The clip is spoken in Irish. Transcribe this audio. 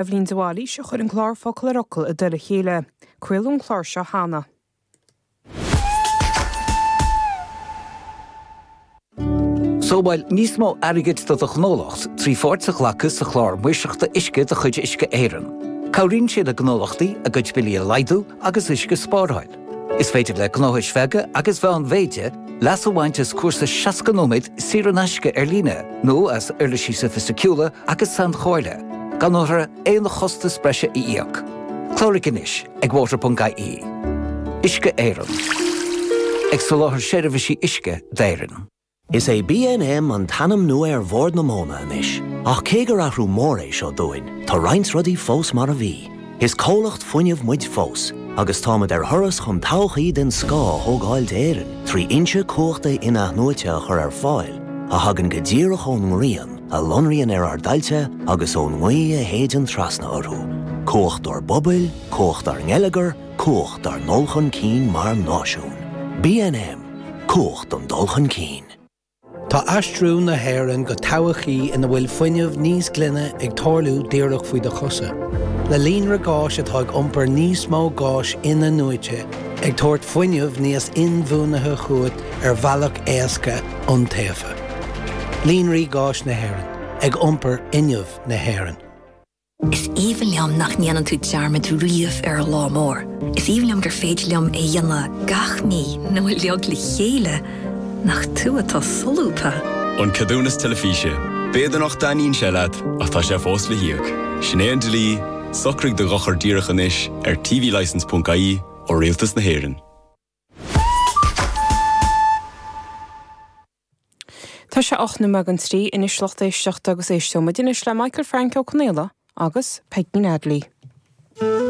Eibhlín de Bhailís a chuir an clár Focal ar Fhocal i dtoll a chéile. Craoladh an clár seo cheana. Sábháil níos mó airgid do do ghnólacht trí pháirt a ghlacadh sa Chlár Maoirseachta Uisce de chuid Uisce Éireann. Cabhraíonn sé le gnólachtaí a gcuid billí a laghdú agus uisce a spáráil. Is féidir le gnóthais bheaga agus mheánmhéide leas a bhaint as cúrsa 60 nóiméad saor in aisce ar líne nó as uirlisí soifisticiúla agus sainchomhairle, gan orthu aon chostas breise a íoc. Cláraigh anois ag water.ie. Uisce Éireann. Ag soláthar seirbhísí uisce d'Éirinn. Is é BNM an t-ainm nua ar Bhord na Móna anois, ach cé gur athrú mór é seo dúinn, tá roinnt rudaí fós mar a bhí. Is comhlacht fuinnimh muid fós, agus táimid ar thuras chun todhchaí den scoth a thógáil d'Éirinn trí fhoinse cumhachta in-athnuaite a chur ar fáil a thagann go díreach ón ngrian a lonraíonn ar ár dtailte agus ón ngaoth a shéideann trasna orthu. Cumhacht ár bpobail, cumhacht ár ngeilleagar, Cumhacht ár ndul chun cinn mar náisiún. BNM, Cumhacht don dul chun cinn. Tá aistriú na hÉireann go todhchaí ina bhfuil fuinneamh níos glaine ag tarlú díreach faoi do chosa, le líonra gáis atá ag iompar níos mó gáis in-athnuaite ag tabhairt fuinneamh níos inbhuanaithe chugat ar bhealach éasca iontaofa. Líonraí gáis na hÉireann ag iompar fhuinneamh na hÉireann. Is aoibhinn liom nach ndéanann tú dearmad riamh ar an lá mór. Is aoibhinn liom gur féidir liom é a dhéanamh gach mí nó uilig le chéile nach tú atá solúbtha. An Ceadúnas Teilifíse. B'fhéidir nach dtaitníonn sé leat, ach tá sé fós le híoc. Sin é an dlí, socraigh do dhochar díreach anois ar tvlicense.ie ó Rialtas na hÉireann. Tá sé ocht nóiméad don trí anois, lucht éisteachta, agus éisteoimid anois le Michael Frank Ó Confhaola agus Peigín Audley.